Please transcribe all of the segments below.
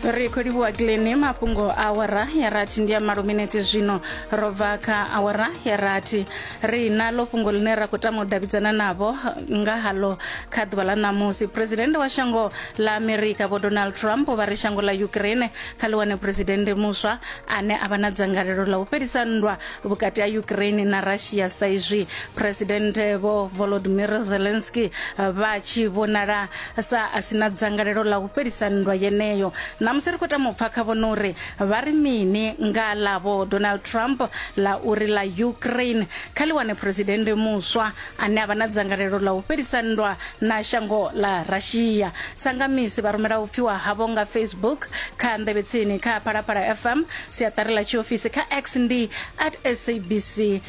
ri khou livhuwa gileni mafhungo a awara ya rathi ndi a malo minete zwino ro bva kha awara ya rathi ri na ḽo fhungo ḽine ra khou tama u davhidzana navho nga haḽo kha ḓuvha ḽa ṋamusi phuresidennde wa shango ḽa amerika vho donald trump vha ri shango ḽa ukraine kha ḽi wane phuresidennde muswa ane a vha na dzangalelo ḽa u fhelisa nndwa vhukati ha ukraine na russia sa izwi phuresidennde vho volodymyr zelensky vha tshi vhonala sa a si na dzangalelo ḽa u fhelisa nndwa yeneyo. Ṋamusi ri khou tama u pfa khavho na uri vha ri mini nga ḽa Vho Donald Trump ḽa uri ḽa Ukraine kha ḽi wane phresidennde muswa ane a vha na dzangalelo ḽa u fhelisa nndwa na shango ḽa Russia. Sa nga misi, vha rumela u pfiwa havho nga Facebook, kha Nḓevhetsini, kha Phalaphala FM, siaṱari ḽa tshiofisi, kha X ndi at SABC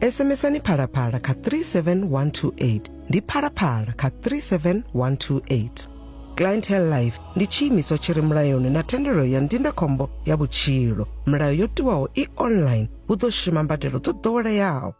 SMSani phalaphala kha 37128 ndi phalaphala kha 37128. Clientele Life ndi tshiimiswa tshi re mulayoni na thendelo ya ndindakhombo ya vhutshilo. Milayo yo tiwaho i online hu ḓo shuma mbadelo dzo ḓoweleaho.